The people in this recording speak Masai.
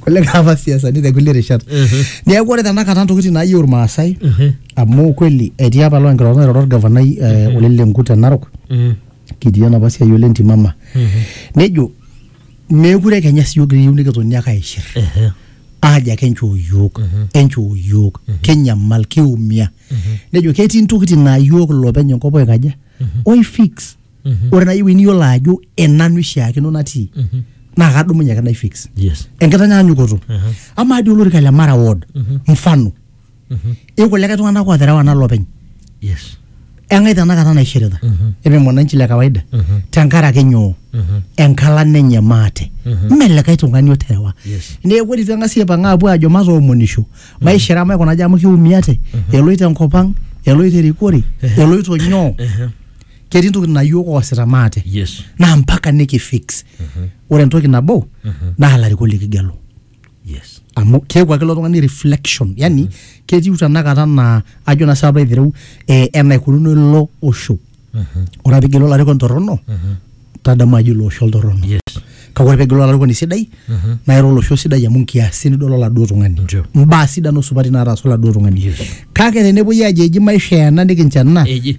kulikae apa siasani te kulie rishat neeku ore tenakata ntokitin naayieu irmaasai amu kweli etii apa loo nkirorot nairoro orgavanai eh, Ole Lenku te Narok kitii enapa siai ole ntimama nejo meekure kenya siyiok kiyieu nikitoni ake aishir aajo ake enchoo yiok enchoo yiok kinyamal kiumia nejo ketii ntokitin naa yiok ilopeny enkop oikaja oifix Mhm. ore naaji ewueji niyiolo ajo enanu ishiakino natii Mhm. naa kadumunye ake naifix Yes. enkitanyanyukoto Aha. amaa dii olorika le mara ward Mhm. mfano Mhm. ikulikae tung'anak ooterewa nanu openy Yes. eng'ae tenakata naishirita Mhm. eme mwananchi le kawaida Mhm. tenkaraki nyoo Mhm. enkalan enye maate Mhm. mme likae tung'ani oterewa Yes. neeku ore itu eng'asi aipang aapuo aajo matoomonisho maishira amu aikunaki amu kiumiate eloito enkop ang eloito erikore eloito nyoo Ehe. ketii ntokitin naa yiok oosita maate yes naa mpaka nikifix ore entoki nabo naa ilarikok likigelu yes amu keeku ake ilo tung'ani reflection yani ketiu tenakata naa ajo naa sapa aitereu eh, enaikununo ilo osho ore ake pigelu olarikoni torrono tadamu ajo ilo osho oltorrono yes kake ore pigelu olarikoni sidai naa ira olosho sidai amu nkiasin nidol oladuo tung'ani Ndio. mbaa sidan osupati naataasa oladuo tung'ani Yes. kake tenepuoi ajo eji maisha ena nikincho ena eji